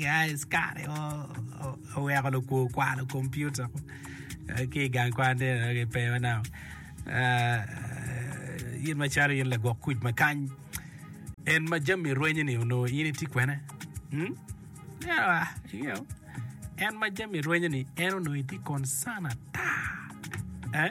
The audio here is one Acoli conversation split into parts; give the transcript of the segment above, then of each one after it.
Askari mo oweko lukwo kwalo kompiuta ki i gang kwan tye dok kipeyo manok. In macalo in lagwok kuc ma kany, en ma jami rwenyo-ni onongo in itye kwene? En ma jami rwenyo-ni en onongo itye konsane ata?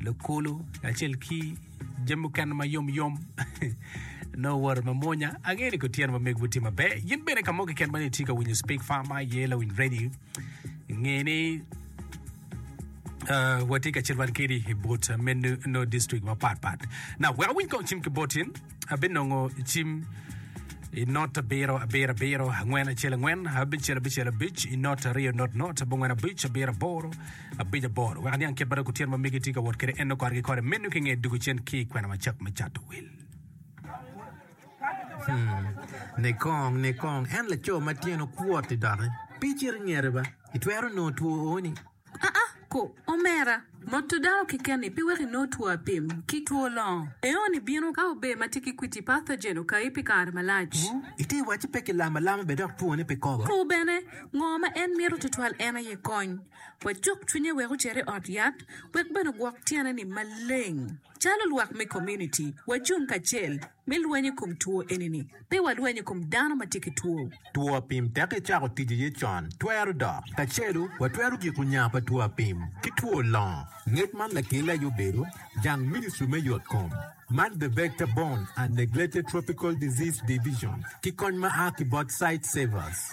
Lukulu kacel ki jami mukene ma yom yom no woro ma monya angeyo ni kutyen ma megwu tye maber yin bene ka mo keken ma itye ka winyo speak far ma ye lawiny radio nge ni uh, watye ka cit wan kedi i bot uh, menu no district mapat pat na wek awiny kong cim ki botin abinongo cim i not abiro abiro abiro angwen acel angwen abicel abicel abic i not aryo not not abongwen abic abiro aboro abic aboro wek aniang kit ma dok gutyer ma megi tye ka wot kwede, en nongo korgi kore meno ki i nge dwogo cen ki i kwena macok me cato wil. Nikong, nikong, en laco ma tyene okwot-ti doki. Pe icit i ngete ba. Itwero nongo two o-ni. Aa, ko, omera. Moto dano keken-ni pe weko inong two apim ki two longo. Eo-ni bino ka ober ma tye ki kwiti, pathogen, okayi pi kare malac. Wu, ite wacci pe kilamo alama bene dok twone pe kobo. Ko bene, ngo ma en mito tutwal en aye kony. Wacuk cwinye wek ocer i ot yat wek bene ogwok tyene-ni maleng. Calo lwak me komuniti, wacung kacel me lweny i kom two eni-ni. Pe walweny i kom dano ma tye ki two. Two apim teke icako tic iye con twero dok. Kacelu, watwero giko nya pa two apim ki two longo. Ngec man lakelle aye obedo jang Ministry me Yotkom man The Vector Borne and Neglected Tropical Disease Division ki kony ma a ki bot Sightsavers.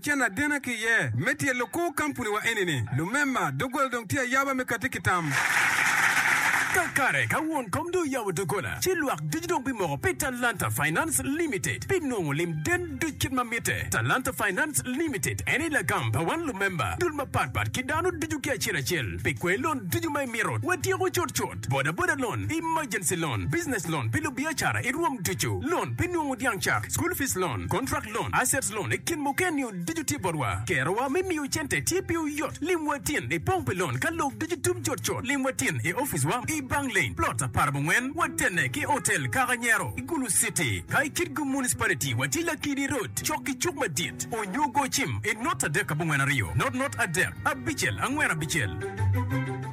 Cen adena ki iye me tye lukur kampuniwa eni-ni, lumema, doggola dong tye ayaba me katti ki tam. Kakare ka won kom dong oyabo doggola, ci lwak ducu dong bimoko pi Talanta Finance Limited pi nongo lim den duc kit ma mitte. Talanta Finance Limited en aye lagam pa wan lumemba, dul mapatpat ki dano ducu ki acel acel pi kwer lon ducu ma imito watyeko cutcut. bodaboda loan, emergency loan, business loan pi lubiacara i rwom ducu, loan pi nungu dyang cak, school fees loan, contract loan, assets loan i kin mukene-niu ducu tye botwa. Kerowa me miyo cente tye piwu yot. Lim wa tin i pong pi loan ka lok ducu tum cut cut. Lim wa tin i opic wa i bang lane, plot aparabongwen, watene ki otel Kaka Nyero i Gulu City. Ka i Kitgum Municipality, watye Lakidi Road, cok ki cuk madit, onyo go cim i not adek abongwen aryo, not not adek, abicel angwen abicel.